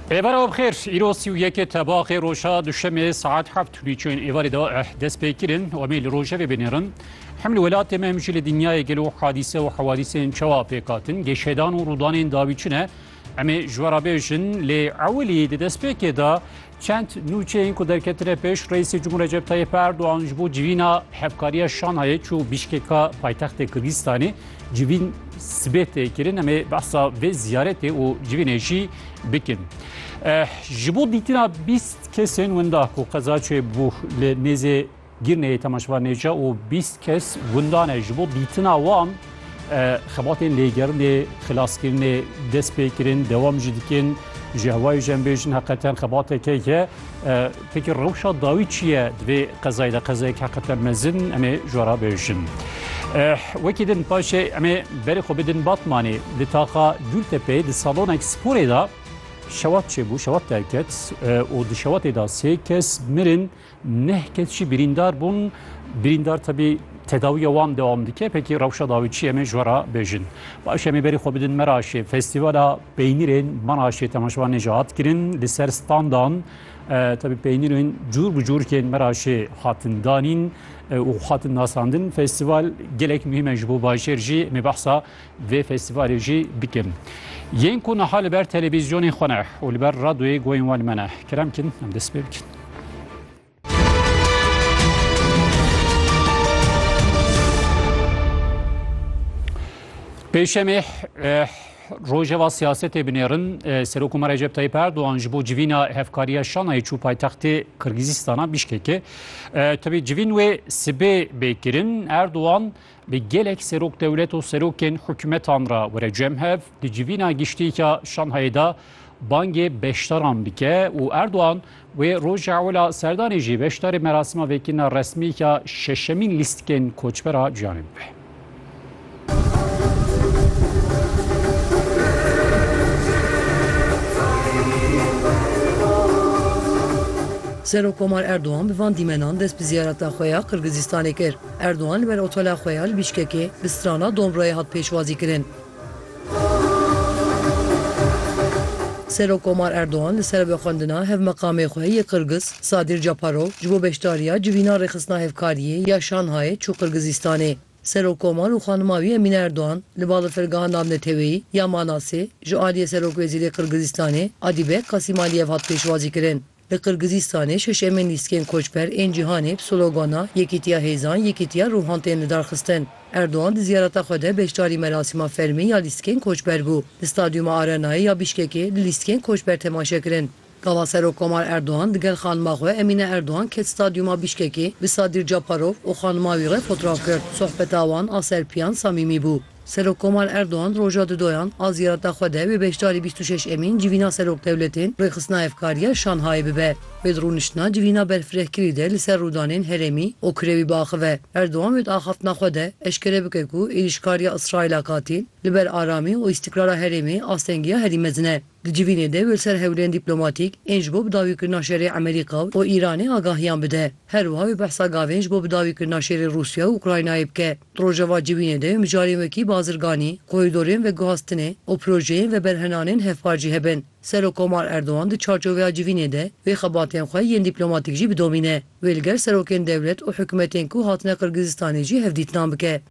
Êvara bixêr îro sî û yekê tebaxê roja duşemê saet heft hûnî çên êvarê da eh dest pê kirin û em ê li rojevê bênêrin. Hem li welatê me hem jî li dinyayê gelo hadîse û hewadîsên çawa pêk hatin, gêşedan û rûdanên dawî çi ne. Em ê ji we re bêjin lê ewilî di destpêkê de Çend nûçeyên ku derketine pêş Reîsê Cumhur Recep Tayyip Erdoğan ji bo civîna hevkariya Şanhayê çû Bişkeka paytextê Kirgistanê civîn sibê tê kirin em ê behsa vê ziyaretê û civînê jî bikin. Eh, ji bo dîtina bîst kesên winda ku qezaçê bû li nêzê Girneyê Temaşva Nêca û bîst kes gundan e. Ji bo dîtina wan xebatên lêgerinê, xilaskirinê dest pê kirin, dewam jî dikin. Ji hewayê jî em bêjin heqeten xebateke ye. Peki rewşa dawî çi ye di vê qezayê de? Qezayek heqeten mezin em ê ji we re bêjin. Wekî din paşê em ê berê xwe bidin Batmanê. Di taxa Gultepeyê di salonek sporê de şewat çêbû, şewat derket û di şewatê de sê kes mirin. Neh kes jî birîndar bûn. Birîndar tebî tedawiya wan dewam dike. Pekî rewşa dawî çi em ê ji we re bêjin. Baş em ê berî xwe bidin Meraşê. Festîvala peynîrên Meraşê temaşevan nê jî hat kirin. Li ser standan tebî peynîrên cûr bi cûr yên Meraşê hatin danîn û hatin nasandin. Festîval gelek muhîm e ji bo bajêr jî. Em ê behsa vê festîvalê jî bikin. Yên ku niha li ber televîzyonên xwe ne û li ber radyoyê guhên wan li me ne, kerem bikin em dest pê bikin. Pêşemê Rojeva siyasetê binêrin e, Serok Umar Recep Tayyip Erdoğan ji bo civîna hevkariya Şanayê çû paytextê Kırgızistana Bişkekê. E, Tevî civîn wê sibê bê kirin Erdoğan Bi gelek serok dewlet û serokên hikûmetan re were cem hev di civîna giştîka Şanhayê de bangê beşdaran bike û Erdogan wê roja ewla serdanê jî beşdarê merasima vekirina resmîka şeşemîn lîstikên koçbera ciyanê bibe. Serok Komar Erdogan bi van dîmenan dest bi ziyareta xwe ya Qirgizistanê kir. Erdogan li ber otela xwe ya li Bîşkekê bi strana Domroyê hat pêşwazîkirin. Serokkomar Erdogan li ser vê xwendina hevmeqamê xwe yê Qirgiz Sadir Japarov ji bo beşdariya civîna rêxistina hevkariyê ya Şanhayê çû Qirgizistanê. Serokkomar û xanima wî Emîne Erdogan li balafirgeha navneteweyî ya Manasê ji aliyê Serokwezîrê Qirgizistanê Adîbek Qasîmaliyev hat pêşwazîkirin. Li Qirgizistanê şeşemên lîstikên koçber ên cîhanê bi slogana Yekîtiya Hêzan, Yekîtiya Ruhan tên lidarxistin. Erdogan di ziyareta xwe de beşdarî merasîma fermî ya lîstikên koçber bû. Di Stadyuma Arenayê ya Bîşkekê di lîstikên koçber temaşe kirin. Gava Serokkomar Erdogan di gel xanima xwe Emîne Erdogan ket Stadyuma Bîşkekê bi Sadîr Caparov û xanima wî re fotraf girt. Sohbeta wan a serpiyan samîmî bû. Serokkomal Erdogan roja di doyan a ziyareta xwe de wê beşdarî bîst û şeş Emîn civîna serokdewletên rêxistina hevkariya Şanhayê bibe. Wê di rûniştina civîna berfirehkirî de li ser rûdanên herêmî û kirewî biaxive. Erdogan wê di axaftina xwe de eşkere bike ku êrîşkariya Îsraîla katîl li ber aramî û îstîkrara herêmê astengiya herî mezin e. Di civînê de li ser hewlên dîplomatîk ên ji bo bidawîkirina şerê Emerîka û Îranê agahiyan bide. Her wiha wê behsa gavên ji bo bidawîkirina şerê Rûsya û Ukraynayê bike. Di rojeva civînê de wê mijarên wekî bazirganî, korîdorên veguhastinê û projeyên veberhenanên hevpar jî hebin. Serokkomar Erdogan di çarçoveya civînê de wê xebatên xwe yên dîplomatîk jî bidomîne. Wê li gel serokên dewlet û hikûmetên ku hatine Qirgizistanê jî hevdîtinan bike.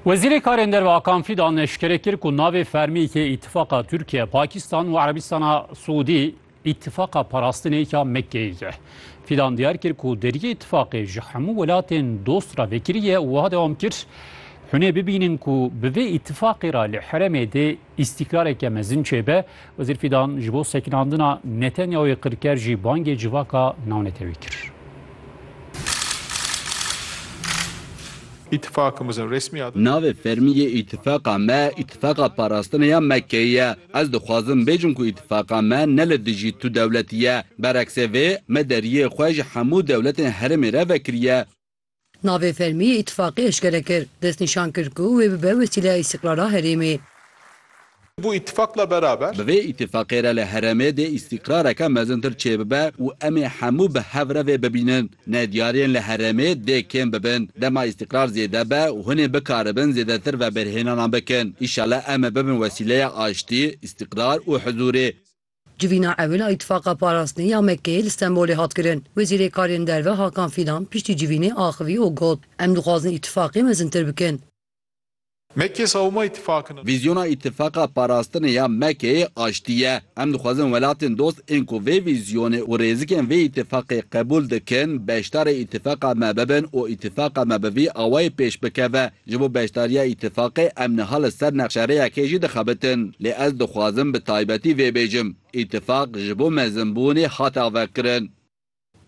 Wezîrê Karên Derve Akan Fîdan neşkere kir ku navê fermî yê Îtîfaqa Tirkiye, Pakistan û Erebistana Siûdî Îtîfaqa Parastinê ya Mekkeyê ye. Fîdan diyar kir ku deriyê îtîfaqê ji hemû welatên dost re vekirî ye û wiha dewam kir, Hûnê bibînin ku bi vê îtîfaqê re li heremê dê Îstîkrareke mezin çêbe, Wezîr Fîdan ji bo sekinandina Netanyahoyê qir ker jî bangê civaka navnetewî kir. Îtîfakimizin resmî adı. Navê fermî yê îtîfaqa me Îtîfaqa Parastinê ya Mekkeyê ye. Ez dixwazim bêjim ku îtîfaqa me ne li dijî tu dewletî ye. Bereksê vê, me deriyê xwe ji hemû dewletên herêmê re vekiriye. Navê fermî yê îtîfaqê eşkere kir, destnîşan kir ku wê bibe wesîleya îstîqrara herêmê. Bu îtîfaqla beraber. Bi vê îtîfaqê re li herêmê dê îstîqrareke mezintir çêbibe û em ê hemû bi hev re vê bibînin. Nediyariyên li herêmê dê kêm bibin. Dema îstîqrar zêde be û hûn ê bikaribin zêdetir veberhênanan bikin. Îşallah em ê bibin wesîleya aştî, îstîqrar û hizûrê. Civîna ewil a Îtîfaqa Parastinê ya Mekkeyê li Stenbolê hat kirin. Wezîrê Karên Derve Hakan Fîdan piştî civînê axivî û got, Em dixwazin îtîfaqê mezintir bikin. Mekke sawma îtîfaqin in. Vîzyona Îtîfaqa Parastinê ya Mekkeyê aştî ye. Em dixwazin welatên dost ên ku vê vîzyonê û rêzikên vê îtîfaqê qebûl dikin, beşdarê îtîfaqa me bibin û îtîfaqa me bi vî awayî pêş bikeve, Ji bo beşdariya îtîfaqê em niha li ser nexşerêyekê jî dixebitin. Lê ez dixwazim bi taybetî vê bêjim, îtîfaq ji bo mezinbûnê hate avekirin.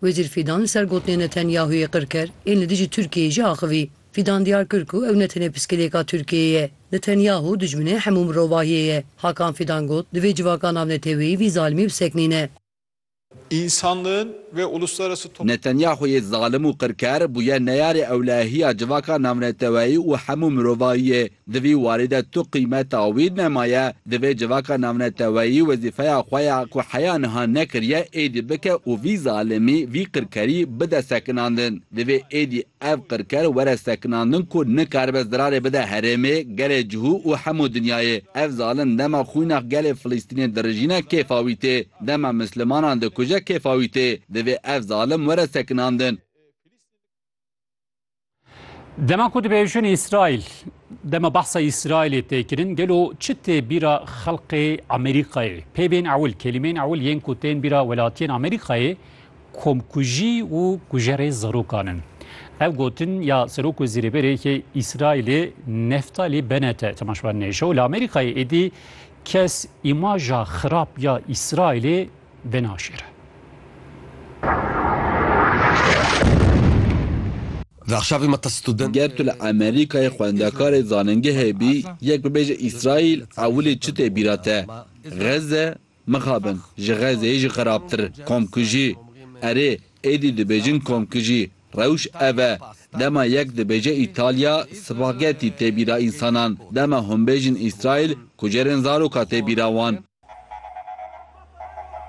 Wezîr Fîdan li ser gotinên Netanyahûyê qir kir, ên li dijî Tirkiyeyê jî axivî. Fîdan diyar kir ku ew ne tenê piskilêka Tirkiyeyê ye. Netanyahû dijminê hemû mirovahiyê ye. Hakan Fîdan got, Divê civaka navneteweyî vî zalimî bisekinîne. însanlığın ve uluslararası toplumın. Netanyahu'yê zalim û qirker bûye neyarê ewlehiya civaka navneteweyî û hemû mirovahiyê. Di vî warî de tu qîmeta wî nemaye. Divê civaka navneteweyî wezîfeya xwe ya ku heya niha nekiriye êdî bike û vî zalimî, vî qirkerî bide sekinandin. Divê êdî Ev qirker were sekinandin ku nikaribe zirarê bide herêmê, gelê cihû û hemû dinyayê. Ev zalim dema xwînax gelê Filistînê dirijîne kêfa wî tê. Dema mislimanan dikuje kêfa wî tê. Divê ev zalim were sekinandin. Dema ku dibêjin Îsraîl, dema behsa Îsraîlê tê kirin, gelo çi tê bîra xelqê Amerîkayê? Pê bên ewil, kelîmeyên ewil yên ku tên bîra welatiyên Amerîkayê, Komkujî û kujerê zarokan in. Ev gotin ya Serok Wezîrê Berê Îsraîlê Neftalî Benete temaşevan Neşo li Amerîkayê êdî kes îmaja xirab ya Îsraîlê venaşêre. Ger tu li Amerîkayê xwendekarê zanîngehê bî yek bibêje Îsraîl ewilî çi tê bîra te? Xezze? Mixabin, ji Xezeyê jî xerabtir, komkujî. Erê, êdî dibêjin komkujî, rewş ev e. Dema yek dibêje Îtalya, spagetî tê bîra însanan. Dema hûn bêjin Îsraîl, kujerên zaroka tê bîra wan.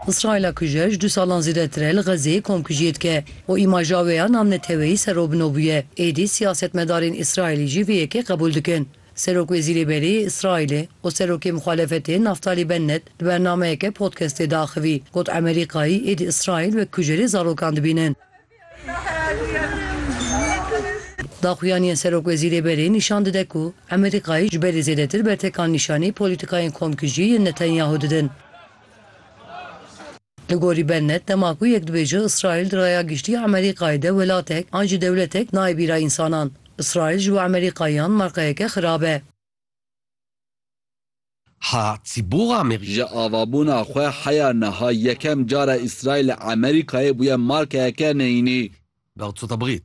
Îsraîla kujer ji du salan zêdetir e li Xezeyê komkujiyê dike û îmaja wê ya namneteweyî serrobino bûye. Êdî siyasetmedarên Îsraîlî jî vê yekê qebûl dikin. Serokwezîrê berê yê Îsraîlê û serokê muxalefetê Naftalî Bennet di bernameyeke podcastê de axivî got Emerîkayî êdî Îsraîl wek kujerê zarokan dibînin. Daxuyaniyên serokwezîrê berê nîşan dide ku Emerîkayî ji berê zêdetir bertekan nîşanî polîtîkayên komkujiyê yên Netanyahu didin. Li gorî Bennett, dema ku yek dibêje Îsraîl di raya giştî Emerîkayê de welatek an jî dewletek nayê bîra însanan, Îsraîl ji bo Emerîkayiyan marqeyeke xirab e. Ha çi bo amê? Ji avabûna xwe heya niha yekem car e Îsraîl li Emerîkayê bûye marqeyeke neyînî. Bexd so te bixît.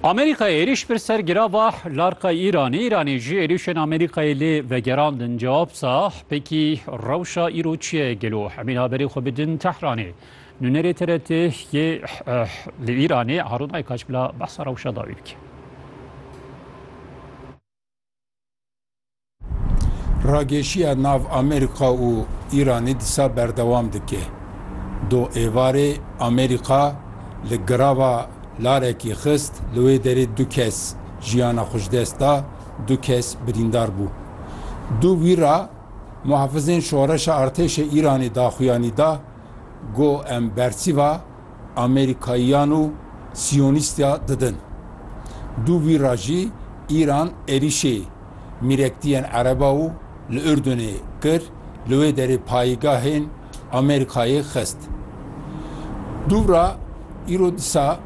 Amerîkayê êrîş bir ser gira va larqa Îranê, Îranê jî êrîşên Amerîkayê lê vegerandin. Cewab sa pêkî rewşa îro çi ye gelo? Emîn haberê xwe bidin Tehranê. Nûnerê TRT yê li Îranê Harûn Aykaç bila behsa rewşa dawî bike. Ragêşiya nav Amerîka û Îranê disa berdewam dike. Do êvarê Amerîka li girava larekî xist, li wê derê du kes jiyana xwe ji dest da, du kes birîndar bû. Du wîra muhafizên şoreşa artêşê Îranê daxuyanî da, got em bersîva Amerîkayiyan û Siyonîstya didin. Du vî ra jî Îran êrîşê mîrektiyên Ereba û li Urdunê kir, li wê derê payîgahên Amerîkayê xist. Dûv ra îro disa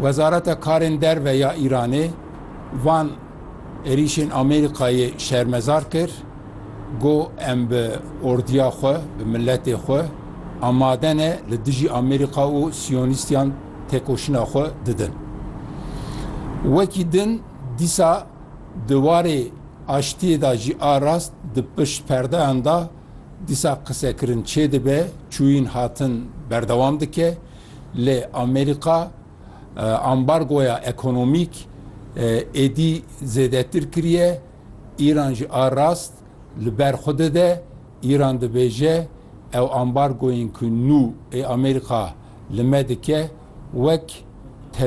Wezareta Karên Derve ya Îranê van. Êrîşên Amerîkayê şermezar kir, got em bi ordiya xwe, bi miletê xwe amade ne li dijî Amerîka û siyonîstiyan têkoşîna xwe didin. Wekî din dîsa di warê aştiyê de jî a rast di pişt perdeyan de dîsa qisekirin çêdibe, çûyîn hatin berdewam dike lê Amerîka, Ambargoya ekonomîk êdî zêdetir kiriye, Îran jî a rast li ber xwe dide. Îran dibêje ew ambargoyên ku nû ê Amerîka li me dike wek